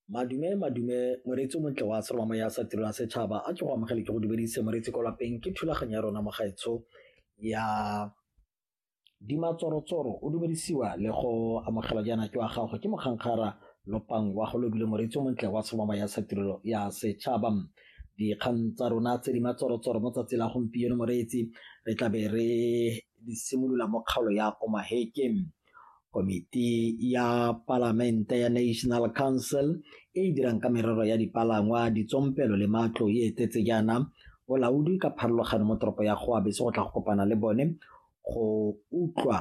Madume, madume, moreetsi o montle wa seroma moya sa tirelo ya setšhaba a ke go amogele ke go dumedise moreetsi ko lapeng ke thulaganyo ya rona mogaetsho ya dimatsorotsoro o dumedisiwa le go amogela jaana ke wa gago ke mokgankgara lopang wa go lobile moreetsi o montle wa seroma moya sa tirelo ya setšhaba dikgang tsa rona tse di matsorotsoro mo tsatsi la gompieno moreetsi re tlabe re di simolola mo kgaolo ya omaheke Komiti ya Palamente ya National Council e e dirang ka merero ya dipalangwa, ditsompelo le matlo e etetse jaana bolaodi ka pharologano mo toropo ya Goabe se go tla go kopana le bone go utlwa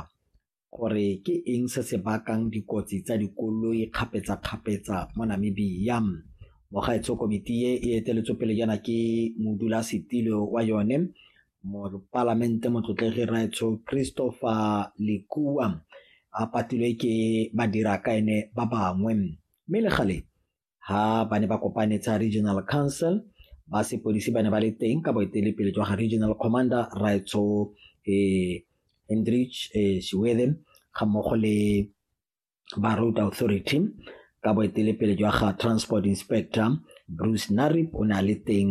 gore ke eng se se bakang dikotsi tsa dikoloi kgapetsa-kgapetsa mo Namibia. Mogaetsho komiti e e eteletswe pele jaana ke modulasetilo wa yone Mopalamente motlotlegi Raetsho Christopher Lekua a patilwe ke badirakaene ba bangwe mme le gale ha ba ne ba kopane tsa regional council ba sepodisi ba ne ba le teng ka boetelepele jwa ga regional commander Raetsho um eh, Hendrich eh, Shiwede ga mmogo le ba Road Authority ka boetelepele jwa ga Transport Inspector Bruce Narib o ne a le teng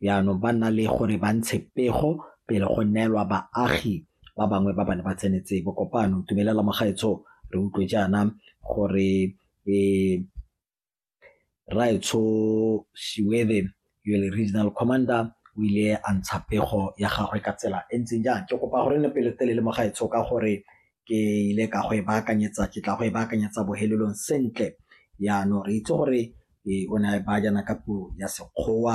jaanong ba nna le gore ba ntshe pego pele go neelwa baagi ba bangwe ba bane ba tsenetse bokopano tumelela mogaetsho re utlwe jaana gore um Rraetsho Shiwede yo le regional commander o ile a ntsha pego ya gagwe ka tsela e ntseng jang ke kopa gore ne pelo telele mo gaetsho ka gore ke ile ka go e baakanyetsa ke tla go e baakanyetsa bohelelong sentle yaanong re itse gore e o ne a e baya jaana ka puo ya sekgowa